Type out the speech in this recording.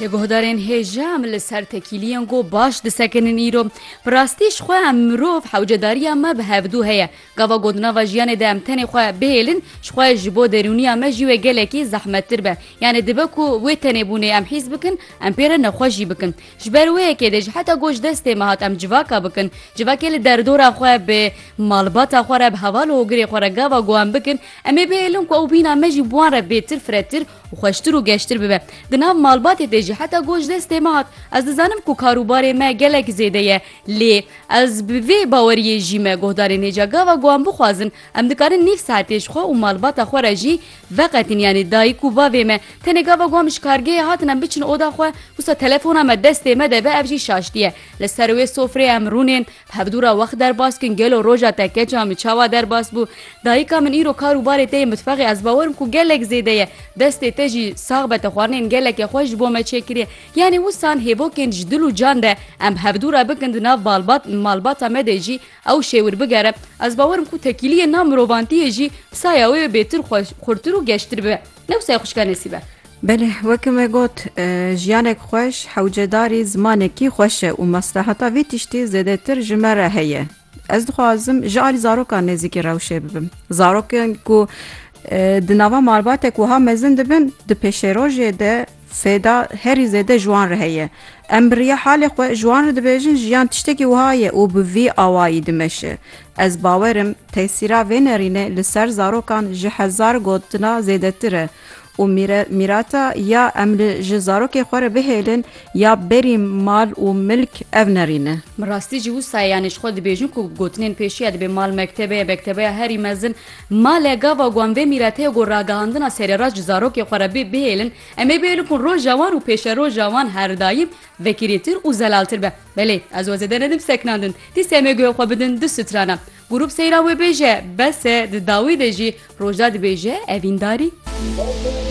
Li guhdarên hêja em li ser tekîliyên ku baş disekinin îro. Bi rastî ji xwe em mirov hewcedariya me bi hevdû heye. Gava ku di nava jiyanê de em tenê xwe bihêlin ji xwe ji bo derûniya me jî wê gelekî zehmettir be. Yanê dibe ku wê tenêbûnê em hîs bikin, em pê re nexweş jî bikin. Ji ber wê yekê dê ji heta ku ji destê me hat em civaka bikin, civakê li derdora xwe, bi malbata xwe re, bi heval û hogirê xwe re gava ku em bikin, em ê bihêlin ku ew bîna me jî bi wan re bêtir, firetir, û xweştir û geştir bibe. Di nav malbatê de jî heta goş destê me hat. Ez dizanim ku kar û barê me gelek zêde ye lê ez bi vê baweriyê jî me guhdarên hêja gava ku em bixwazin em dikarin nîv saetê ji xwe û malbata xwe re jî veqetin yanî dayik û bavê me tenê gava ku em ji kargehê hatin em biçin oda xwe wisa telefona me destê me de be ev jî şaştî ye li ser wê sofrê em rûnên Hevdûra wext derbas kin gelo roja te keça min çawa derbas bû. Dayika min îro kar û barê te yê mitfexê ez bawer im ku gelek zêde ye. Destê te jî sax be te xwarinên geleke xweş ji bo me çêkiriye. Yanê wisan hêvokên ji dil û can de em hevdûra bikin di nav balbat malbata me de jî ew şêwir bigere. Ez bawer im ku tekîliyên nav mirovantiyê jî saya wê bêtir xwe xurtir û geştir bibe. Ne wisa xuşka nesîbe. Belê weke me got jiyanek xweş hewcedarî zimanekî xweş e û maslehata vî tiştî zêdetir ji me re heye. Ez dixwazim ji alî zarokan nêzîkî rewşê bibim. Zarokên ku di nava malbatek wiha mezin dibin di pêşerojê de Sêda, Herî zêde ji wan re heye. Em bi riya halê xwe ji wan re dibêjin jiyan tiştekî wiha ye û bi vî awayî dimeşe. Ez bawer im tesîra vê nerînê li ser zarokan ji hezar gotina zêdetir e û mîre mîrata ya em li ji zarokê xwe re bihêlin ya berî mal û milk ev nerîn e. Bi rastî jî wisa ye yanî ji xwe dibêjin ku gotinên pêşiya dibê mal mektebeya bektebeya herî mezin Male gava wan vê mîrete ye ku ragihandina serêraç ji zarokê xwe re bê bihêlin, em ê bihêlin ku roja wan û pêşeroja wan her daîm vekirîtir û zelaltir be. Belê, ez we zêde nedim seknandin. Dîse em ê guhê xwe bidin du strana. Grûp seyran wê bêje, bes e, di dawî de jî rojda dibêje evîndarî.